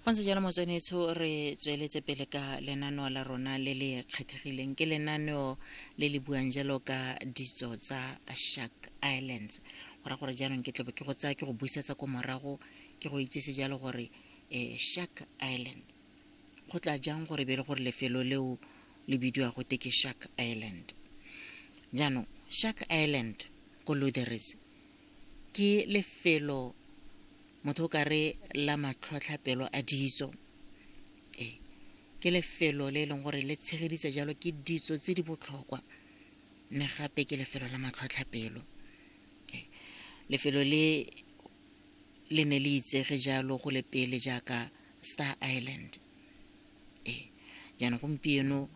fa ntse jalo motswanetsho re tsweletse pele ka lenaneo la rona le le kgethegileng ke lenaneo le le buang jalo ka ditso tsa shark islands go ra gore jaanong ke tlobe ke go tsaya ke go busetsa ko morago ke go itsise jalo gore um shark island go tla jang gore be le gore lefelo leo le bidiwa gote ke shark island jaanong shark island ko lutheris ke lefelo motho o kare la matlhotlhapelo a ditso ee ke lefelo le e leng gore le tshegeditse jalo ke ditso tse di botlhokwa mme gape ke lefelo la matlhotlhapelo ee lefelo le le ne le itsege jalo go le pele jaaka star island ee jaanong gompieno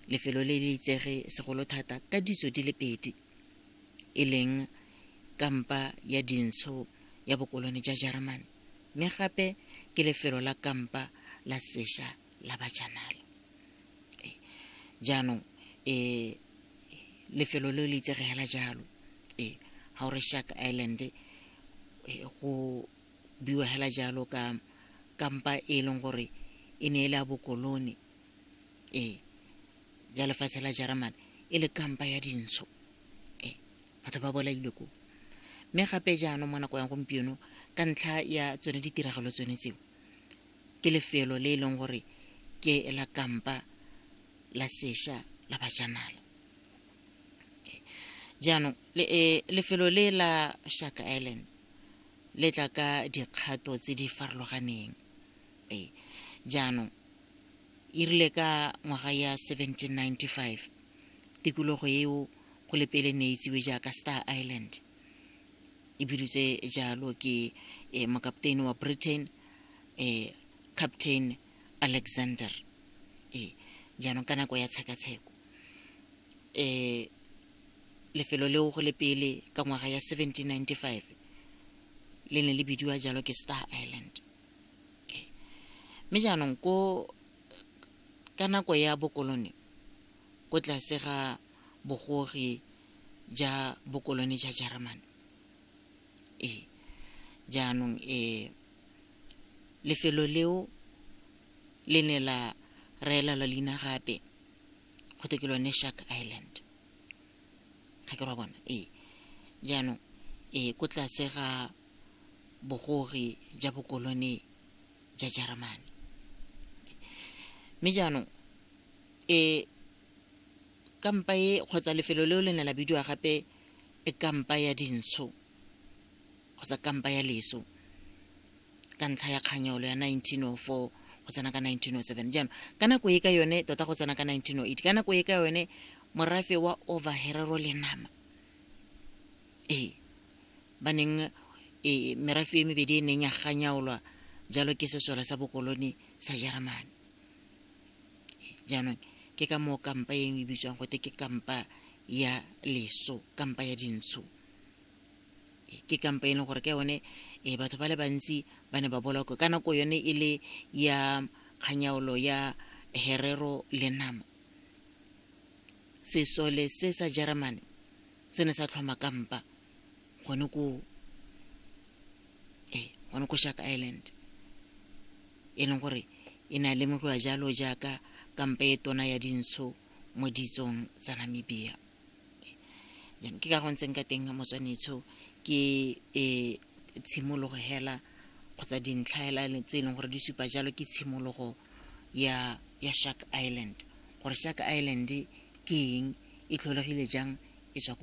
lefelo le le itsege segolo thata ka ditso di le pedi e leng kampa ya dintsho ya bokolone ja Jeremane, mme gape ke lefelo la kampa la sesha la bajanala. E, jaanong e lefelo le le itsege hela jalo e ha o re Shark Island e, go biwa hela jalo ka kampa e leng gore e ne e le a bokolone ee ya lefatshe la jeremane e le kampa ya dintsho ee batho ba bolailwe ko mme gape jaanong mo nako ya gompieno ka ntlha ya tsone ditiragalo tsone tseo ke lefelo le e leng gore ke la kampa la sesha la bajanala jaanong eh, lefelo le la shark island le tla ka dikgato tse di farologaneng ee jaanong e rile ka ngwaga ya 1795 tikologo eo go le pele ne itsiwe jaaka star island e bidutse jalo ke eh, mokapteini wa britain eh, captain alexander eh, jaanong ka nako ya tshekatsheko eh, lefelo leo go le pele ka ngwaga ya 1795 le ne le bidiwa jalo ke star island Mme jaanong ko ka nako ya bokolone ko tlase ga bogogi ja bokolone ja Jeremane ee jaanong ee lefelo leo le ne la reela la leina gape go te ke lone Shark Island ga ke ra bona ee jaanong ee ko tlase ga bogogi ja bokolone ja Jeremane. Mme jaanong e kampa e kgotsa lefelo leo le ne la bidiwa gape e kampa ya dintsho kgotsa kampa ya leso ka ntlha ya kganyolo ya 1904 go tsena ka 1907 jaanong ka nako e ka yone tota go tsena ka 1908 ka nako e ka yone morafe wa overherero le nama ee ba neng e merafe e mebedi e neng ya ganyaolwa jalo ke sesole sa bokoloni sa jeremane jaanong ke ka moo kampa eng e bitswang gote ke kampa ya leso kampa ya dintsho ke kampa e leng gore ka yone e batho ba le bantsi ba ne ba bolakwe ka nako yone e le ya kganyaolo ya herero le nama sesole se sa jeremane se ne sa tlhoma kampa gone ko ee eh, gone ko shark island e leng gore e ne a lemogiwa jalo jaaka kampa e tona ya dintsho mo ditsong tsa namibia jaanong ke ka go ntseng ka teng ga motswanetsho ke um tshimologo hela kgotsa dintlha hela tse e leng gore di supa jalo ke tshimologo ya ya shark island gore shark island ke eng e tlholegile jang e tswa ko